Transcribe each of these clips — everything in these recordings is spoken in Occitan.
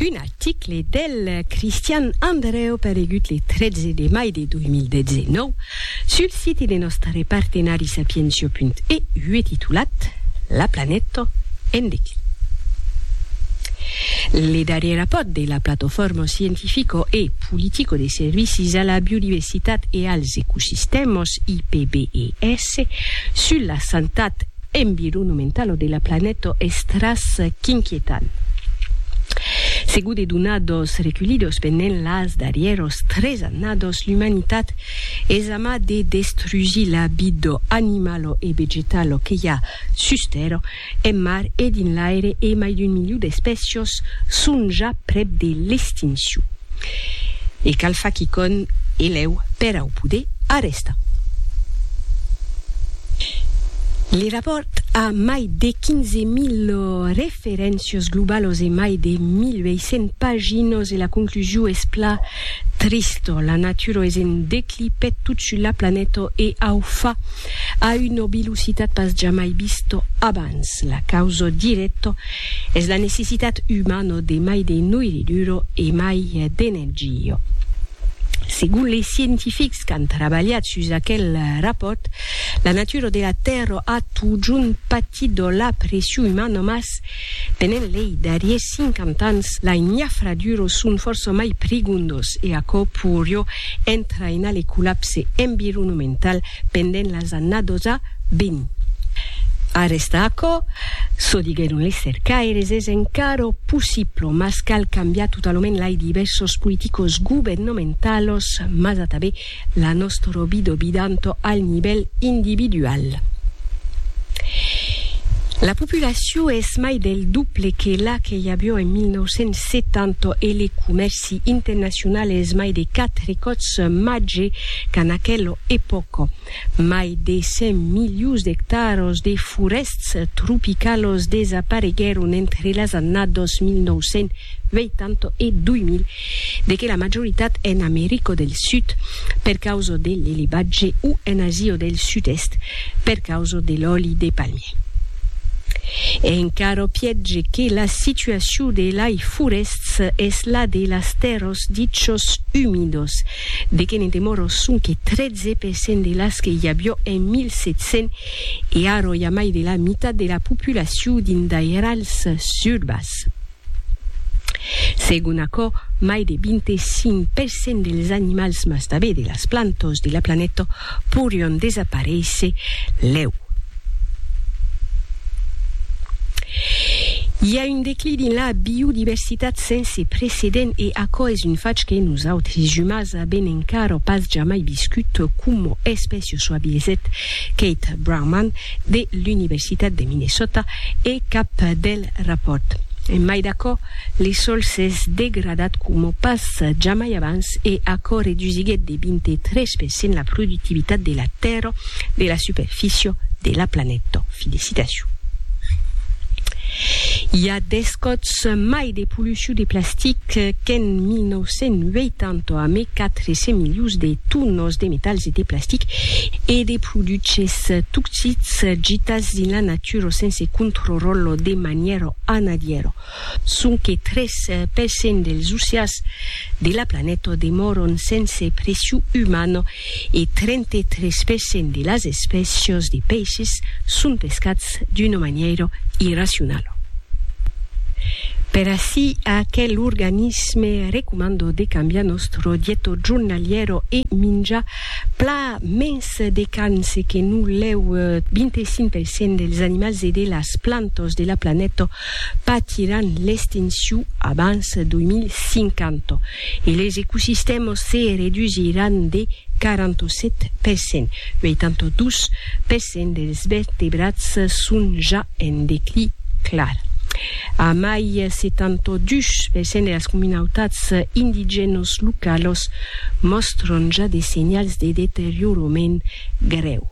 Un article del Christian Andreu paregut le 13 de mai de 2019 sul siti de nòstre partenari sapientia.eu e titulat La planeta en declin. Le darrier rapòrt de la Platofòrma Scientifico e Politico de Servicis a la Biodiversitat e als Ecosistèmas, IPBES, sus la santat environomentalo de la planeta es tras qu'inquietant. Segur de donados reculhidos pendent las darrièros tres annados, l'umanitat es ama de destrugir la vida animalo e vegetalo que i a sus tèrra, en mar e dins l'aire e mai d'un miliu d'espècios son ja prèp de l'extincion. E cal far quicònh e lèu per au poder arrestar. Le rapòrt a mai de 15.000 referéncios globalos e mai de 1.800 paginos e la conclusiu es pla trista, la natura es en declí peth tot sus la planeta e au fa a una velocitat pas jamai vista abans. La causa dirècta Es la necessitat umano de mai de noiri duro e mai d'energia. Segon les scientifics qu'an trabalhat sus aquel rapòrt, la natura de la Tèrra a totjorn patit de la pression umana mas, pendent lei darriers 50 ans, lai nafradures son fòrça mai prigondos e aquò poirió entrainar le collapse environomental pendent las annadosa vint. Arrèsta aquò, çò diguèron les cercaires, es encara possible, mas cal cambiar totalament lai divèrsos politicos governamentalos, mas atabé la nòstra vida bidanto al nivèl individual. La populacion es mai del doble que la que i avió en 1970 e les comèrcis, L'Amnistie Internationale es mai de quatre còps màger qu'en aquela epòca. Mai de 100 milions d'ectaras de forèsts tropicalas desapareguèron entre las annadas 1980 e 2000, de que la majoritat en America del Sud, per causa de l'elevatge, o en Asia del Sud-Èst, per causa de l'òli de palmier. E encara piètge que la situacion de lai forèsts es la de las tèrras dichos humidos, de que ne demòra sonque 13 per cent de las que i avió en 1700 e ara i a mai de la mitat de la populacion dins d'airals urbas. Segon aquò, mai de 25 per cent dels animals mas tanben de las plantas de la planeta porion desaparéisser lèu. I a un declí dins la biodiversitat sense precedent e aquò es un fach que nosautres umans avèm encara pas jamai viscut, coma espècia çò avisèt Kate Brauman de l'Universitat de Minnesota e cap del Eth rapòrt, en mai d'aquò, li sòl s'es degradat coma pas jamai abans e aquò redusiguèt de 23 per cent la productivitat de la tèrra de la superficie de la planeta. Fi de citacion. I a 10 còps mai de pollucion de plastic qu'en 1980 amé 400 milions de tonas de metals e de plastic e de produches toxics gitats dins la natura. lecturo sense controrollo de maniero a nadiero, sonque tres per cent dels ussias de la planeta demoron sense pressiu umana e trente-tres per cent de las espècias de peisses son pescats d'una maniero irracionala. Per ací aquel organisme recomanda de cambiar nòstro dieto jornaliero e minjar Pla mens de cans que non lèu 25% dels animals e de las plantas de la planeta patiràn l'extincion abans 2050 e les ecosistèmas se redusiràn de 47%. 82% dels vertebrats son ja en declin clar. A mai se tanto dus per cent de las comunautats indigènos localos mòstron ja de senhals de deteriorament grèu.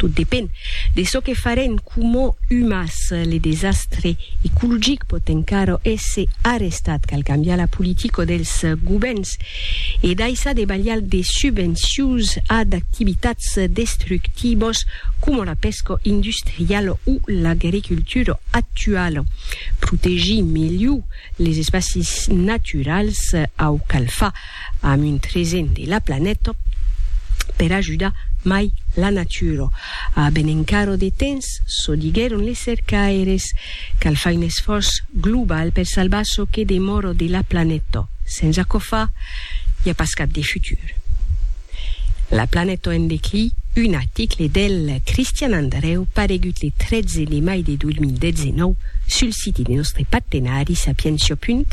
Tot depend de çò que farem coma umans. Le desastre ecologic pòt encara èsser arrestat, cal cambiar la politica dels govèrns e daissar de balhar de subvencions a d'activitats destructivas coma la pesca industriala o l'agricultura actuala. Protegir melhor les espacis naturals au cal far amb un tresen de la planeta per ajudar mai la natura. A ben encara de temps, çò diguèron les cercaires. Cal far un esfòrç global per salvar çò que demòro de la planeta. Sens aquò far, i a pas cap de futur. La planeta en declí, un article del Cristian Andrèu paregut le 13 de mai de 2019 sul site de nòstre partenari sapientia.eu.